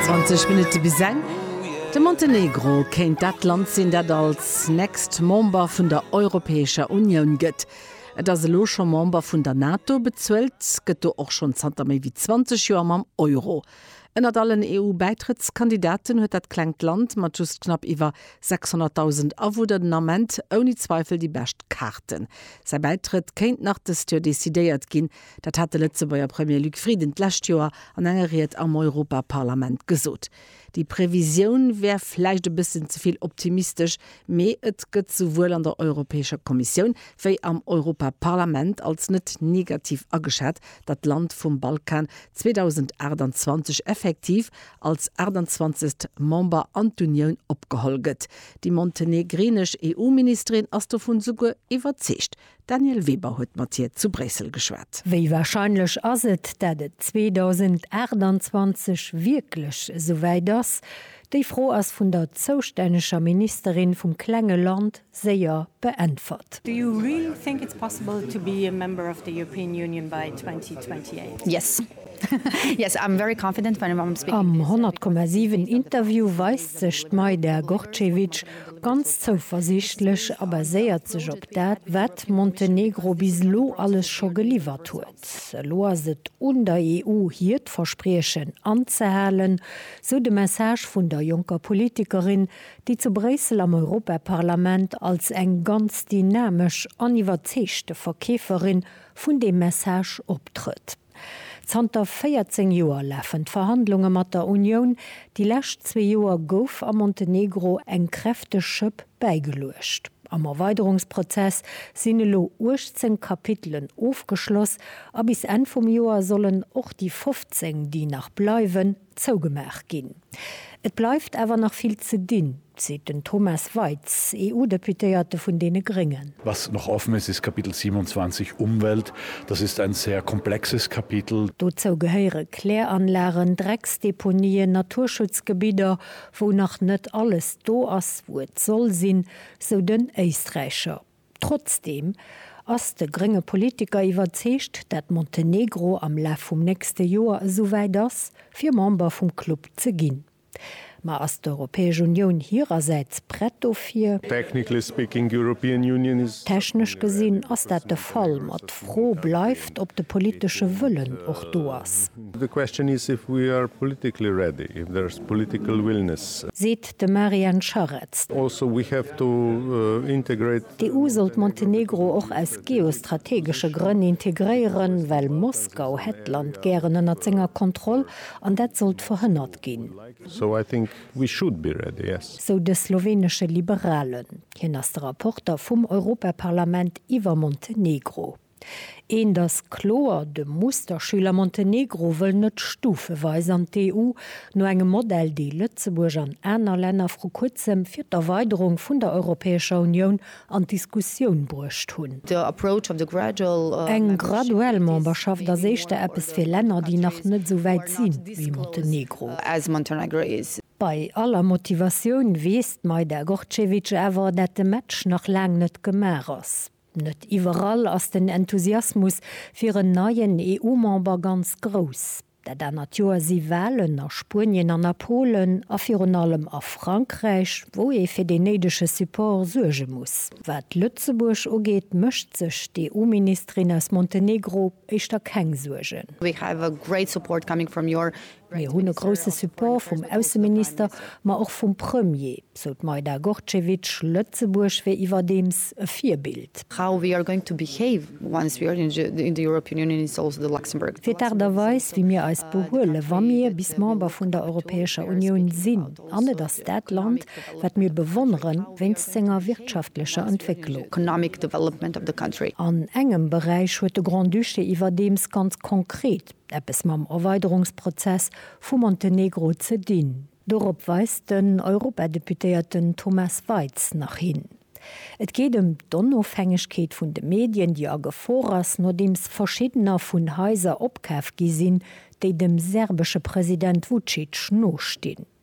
20 Minutte bis eng. De Montenegro kéint dat Land sinn, dat als nächst Member vun der Europäescher Unioun gëtt. Et ass elo scho Member vun der NATO, bezuelt gëtt do och schonn zanter méi wéi 20 Joer mam Euro. Ënnert allen EU-Bäitrëttskandidaten huet dat klengt Land mat just knapp iwwer 600.000 Awunner den Ament ouni Zweifel déi bescht Kaarten. Säi Bäitrëtt kéint nach dëst Joer decidéiert ginn. Dat hat de Lëtzebuerger Premier Luc Frieden d'lescht Joer an enger Ried am Europaparlament gesot. Déi Previsioun wär vläicht e bëssen ze vill optimistesch, mee et gëtt souwuel an der Europäescher Kommissioun wéi am Europaparlament als net negativ ageschat, datt d'Land vum Balkan 2028 effektiv als 28. Member an d'Unioun opgeholl gëtt. Déi montenegrinesch EU-Ministerin ass dovun souguer iwwerzeegt. D'Danièle Weber huet mat hir zu Bréissel geschwat. Wéi warscheinlech ass et, dat et 2028 wierklech esou wäit ass? Déi Fro ass vun der zoustänneger Ministerin vum klenge Land séier beäntwert. Do you really think it's possible to be a member of the European Union by 2028? Yes. Am 100,7 Interview weist sech d'Majda Gorcevic ganz zouversiichtlech a baséiert sech op dat, wat Montenegro bis elo alles scho geliwwert huet. Elo ass et un der EU hiert Verspriechen anzehalen, sou de Message vun der jonker Politikerin, déi zu Bréissel am Europaparlament als eng ganz dynamesch an iwwerzeegte Verkeeferin vun deem Message optrëtt. Zanter 14 Joer lafen d'Verhandlunge mat der Unioun. Déi lescht zwee Joer gouf am Montenegro eng kräfteg Schëpp bäigeluecht. Am Erweiderungsprozess sinn elo 18 Kapitelen ofgeschloss a bis Enn vum Joer sollen och déi 15, déi nach bleiwen, zougemaach ginn. Et bleift awer nach vill ze dinn, seet den Thomas Weitz, EU-Deputéierte vun deene Gréngen. Was noch offen ist, ist Kapitel 27, Umwelt. Das ist ein sehr komplexes Kapitel. Dozou gehéiere Kläranlagen, Drecksdeponien, Naturschutzgebidder, wou nach net alles do ass, wou et soll sinn, sou den Éisträicher. Trotzdeem ass de grénge Politiker iwwerzeegt, dat Montenegro am Laf vum nächste Joer esouwäit ass, fir Member vum Club ze ginn. Ma ass d'Europäesch Unioun hirersäits prett dofir? Technically speaking, European Union is. Technesch gesinn ass dat de Fall, ma d'Fro bleift, ob de politesche Wëllen och do ass. The question is if we are politically ready, if there's political willingness. Seet De Marian Scharetz. D'EU sollt Montenegro och aus geostrategesche Grënn integréieren, well Moskau hätt d'Land gären ënnert senger Kontroll an dat sollt verhënnert ginn, sou de slowenesche Liberalen. Hien ass de Rapporter vum Europaparlament iwwer Montenegro. Eent ass kloer, de Musterschüler Montenegro wëll net stufeweis an d'EU, no engem Modell, dee Lëtzebuerg an aner Länner vru kuerzem fir d'Erweiderung vun der Europäescher Unioun an d'Diskussioun bruecht hunn. Eng graduell Memberschaft ass éischter eppes fir Länner, déi nach net esou wäit si wéi Montenegro. Bei aller Motivatioun weess d'Majda Gorcevic awer, dat de Match nach laang net gemaach ass. Net iwwerall ass den Enthusiasmus fir en neien EU-Member ganz grouss. Dat anert Joer si Walen a Spuenien an a Polen a virun allem a Frankräich, wou ee fir deen néidege Support suerge muss. Wat Lëtzebuerg ugeet, mécht sech d'EU-Ministerin aus Montenegro éischter keng Suergen. Mir hunn e grousse Support vum Ausseminister, ma och vum Premier, sou d'Majda Gorcevic. Lëtzebuerg wier iwwerdeems e Virbild. Fir d'Aart a Weis, wéi mir eis behuelen, wa mir bis Member vun der Europäescher Unioun sinn. An et ass dat Land, wat mir bewonneren, wéinst senger wirtschaftlecher Entwécklung. An engem Beräich huet de Grand-Duché iwwerdeems ganz konkret. eppes mam Erweiderungsprozess vu Montenegro ze dinn. Dorop weist den Europadeputéierten Thomas Waitz nach hin. Et geet ëm d'Onofhängegkeet vun de Medien, déi a Gefor ass, nodeems verschiddener vun Haiser opkaf gi sinn, déi dem serbesche President Vucic nostinn.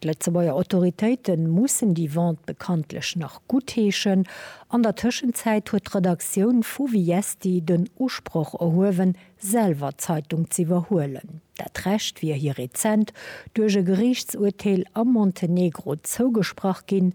D'Lëtzebuerger Autoritéite mussen déi Vente bekanntlech nach guttheeschen. An der Tëschenzäit huet d'Redaktioun vu Viesti den Usproch erhuewen, selwer d'Zeitung z'iwwerhuelen. Dat Recht wier hir rezent duerch e Geriichtsurteel am Montenegro zougesprach ginn.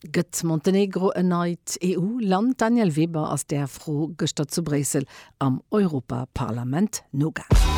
Gëtt Montenegro en neit EU-Land? D'Danièle Weber ass där Fro gëschter zu Bréissel am Europaparlament nogaangen.